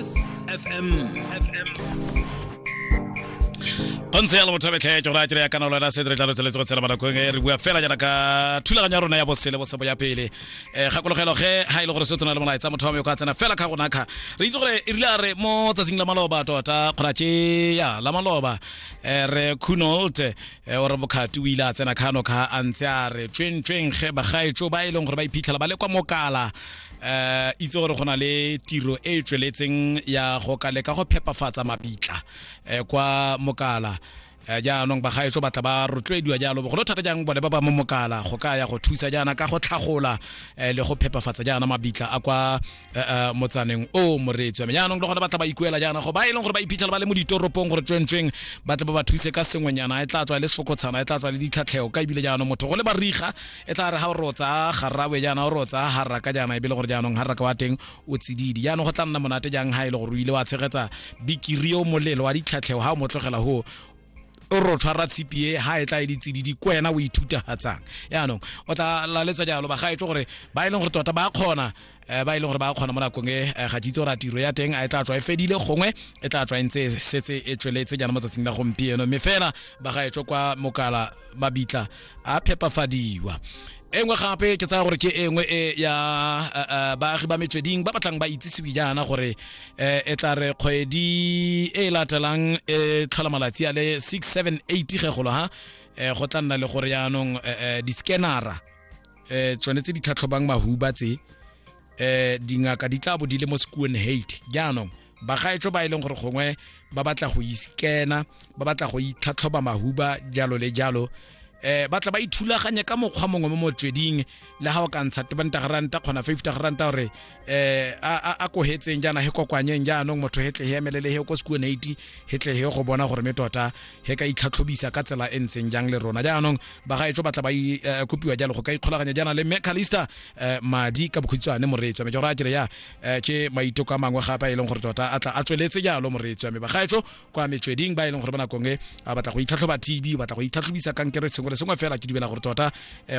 FM. go ntse yalo motho a betlhe ke gore a kere ya kana lona se re tla re tsweletse go tshela banakong e re bua fela jaana ka thulaganyo ya rona ya bosele bosebo ya pele um gakologelwa ge ga e le gore se o tsena le molaetsa motho wa me o ka tsena fela ka gona kga re itse gore e rile a re mo tsatsing la maloba tota kgora ke ya la maloba um re cunolt um ore bokhati o ile a tsena kgano kga a ntse a re tsweng tsweng ge bagaetso ba e leng gore ba iphitlhela ba le kwa mokala eh itse gore go na le tiro e e tsweletseng ya go ka leka go phepafatsa mabitla eh, kwa mokala Eh, jaanong bagaetso batla ba rotloediwa jalo bogolo thata jang bone ba ba mo mokala go ka ya go thusa jaana ka go tlhagola eh, le go phepafatsa jaana mabitla a kwa eh, eh, motsaneng o moreetsi wa me jaanong le gone batla ba ikuela jaana go ba e leng gore ba iphitlhela ba le mo ditoropong gore tswentsweng batla ba ba thuse ka sengwenyana e tla tswa e le sefokotshana e tla tswa le ditlhatlheo ka ebile jaanong motho go le bariga e tla re ga o re o tsaya garrawe jaana o re o tsaya harraka jaana e be le gore jaanong harraka wa teng o tsididi jaanong go tla nna monate jang ga e le gore o ile wa tshegetsa bikiri o molelo wa ditlhatlhego ga o motlogela go o re o tshwara tshipi e ga e tla e ditsididi ko wena o ithutafatsang jaanong o tla laletsa jalo bagaetso gore ba e leng gore tota ba kgona um ba e leng gore ba kgona mo nakong e eh, ga ke itse gore a tiro ya teng a e tla tswa e fedile gongwe e tla tswa e ntse e setse e tsweletse jaana mo tsatsing la gompieno mme fela ba ga etswe kwa mokala mabitla a phepafadiwa e nngwe gape ke tsaya gore ke e nngwe e ya eh, eh, baagi ba metsweding ba batlang ba itsisiwe jaana gore eh, e tla re kgwedi e e latelang e tlhola malatsi a le 678 ge golo ha go tla nna le gore yaanong di-scanara eh tsone tse di tlhatlhobang mahuba tse eh dingaka di tla bo di le mo sekuwen hate jaanong bagaetsho ba e leng gore gongwe ba batla go iskena ba batla go itlhatlhoba mahuba jalo le jalo eh batla ba ithulaganye ka mokgwa mongwe mo motsweding le ga o ka ntsha tebanta garanta kgona 50 garanta gore eh a a kohetseng jana he kokwanyeng jaanong motho he tle he emelele he ko sekuone iti he tle he go bona gore me tota he ka itlhatlhobisa ka tsela e ntseng jang le rona jaanong ba ga etso batla ba i eh, kopiwa jalo go ka ikgolaganya jana le me Calista eh, madi ka bokhutshwane moreetswa me jora kere ya eh, ke maiteko a mangwe gape a e leng gore tota a tla a tsweletse jalo moreetswa me ba ga etso kwa metsweding ba e leng gore ba nakong e a batla go itlhatlhoba TB batla go itlhatlhobisa kankere sengwe le sengwe fela ke dumela gore tota eh,